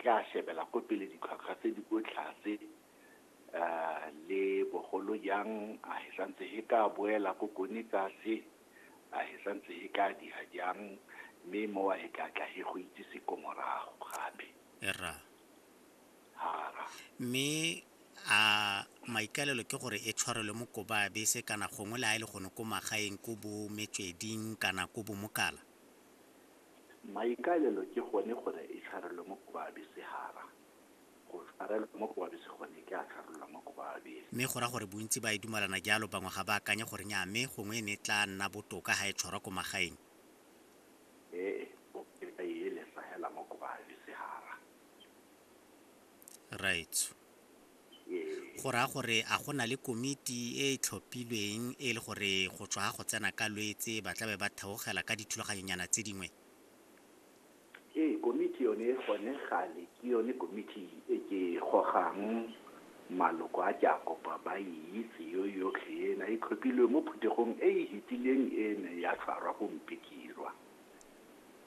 tla shebela ko pele ditlhwatlhwa tse di ko tlase um le bogolo jang a he santse he ka boela ko kone tlase a he santse he ka diha jang mme mowa he ka tla he go itsise ko morago gape ra hara mme a maikalelo ke gore e tshwarelwe mo koba ya bese kana gongwe le a e le gone ko magaeng ko bo metsweding kana ko bomokala Maikaelelo ke gone gore e tshwarelwe mo Kobabe Sehara. Go tshwarelwa mo Kobabe se gone ke a tshwarelwa mo Kobabe. Mme go ra gore bontsi ba e dumalana jalo, bangwe ga ba akanye gore nyaa mme gongwe e ne e tlaa nna botoka ha e tshwarwa ko magaeng. Ee, bokae ba e elesa hela mo Kobabe Sehara. Raetsho. Go raya gore a go na le komiti e e tlhophilweng e le gore go tswa ga go tsena ka Lwetse ba tla be ba theogela ka dithulaganyonyana tse dingwe? Ee, komiti yone gone gale ke yone komiti e ke e gogang maloko a ke a kopa ba e itse yo yotlhe ena e tlhophilwe mo phuthegong e e hetileng e ne ya tshwarwa ko Mpikirwa.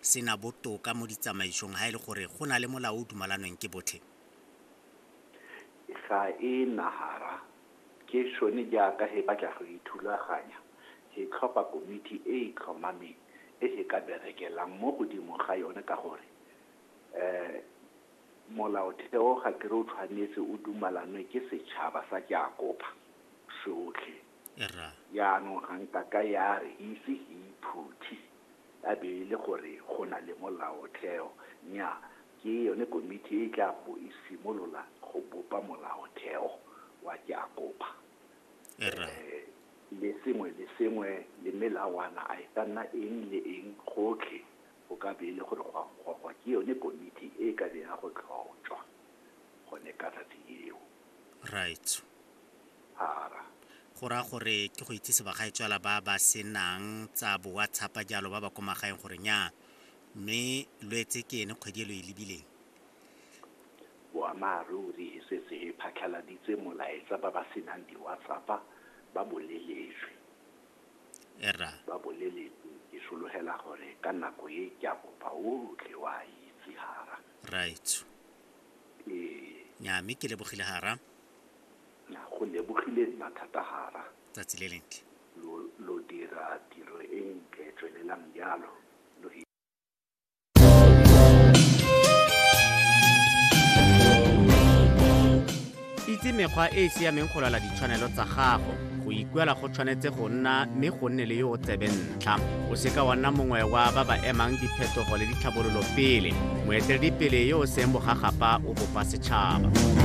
se na botoka mo ditsamaisong ha e le gore go na le molao o dumalanweng ke botlhe? Ga e na hara. Ke sone jaaka he batla go ithulaganya, he tlhopha komiti e e tlhomameng e he ka berekelang mo godimo ga yone ka gore um molaotheo ga ke re o tshwanetse o dumalanwe ke setšhaba sa Jakoba sotlhe. Rra. Jaanong ga nka ka ya re e ise e iphuthe ya be e le gore go na le molaotheo. Nnyaa, ke yone komiti e e tla bo e simolola go bopa molaotheo wa Keakopa. Rra. Le sengwe le sengwe le melawana a e ka nna eng le eng gotlhe go ka be e le gore go a gogwa ke yone komiti e e ka be ya go tlhotšwa gone ka tsatsi leo. raitso ara go raya gore ke go itsise bagaetswala ba ba senang tsa bo whatsapp jalo ba ba ko magaeng gore nya mme lo etse ke ene kgwedi e lo e lebileng boammaaruri e setse e phatlhaladitse molaetsa ba ba senang di-whatsapp ba boleletswe era ba boleletswe ke sologela gore ka nako e ke a kopa otlhe wa itse hara raitso Ee, nya mme ke lebogile hara na go lebogile nna thata hara. tsatsi le lentle Lo, lo dira tiro e ntle, tswelelang jalo. Lo hi- itse mekgwa e e siameng go lwala ditshwanelo tsa gago go ikuela go tshwanetse go nna mme go nne le yo o tsebe ntlha o seka wa nna mongwe wa ba ba emang diphetogo le ditlhabololo pele moeteledipele yo o seng bogagapa o bopa setšhaba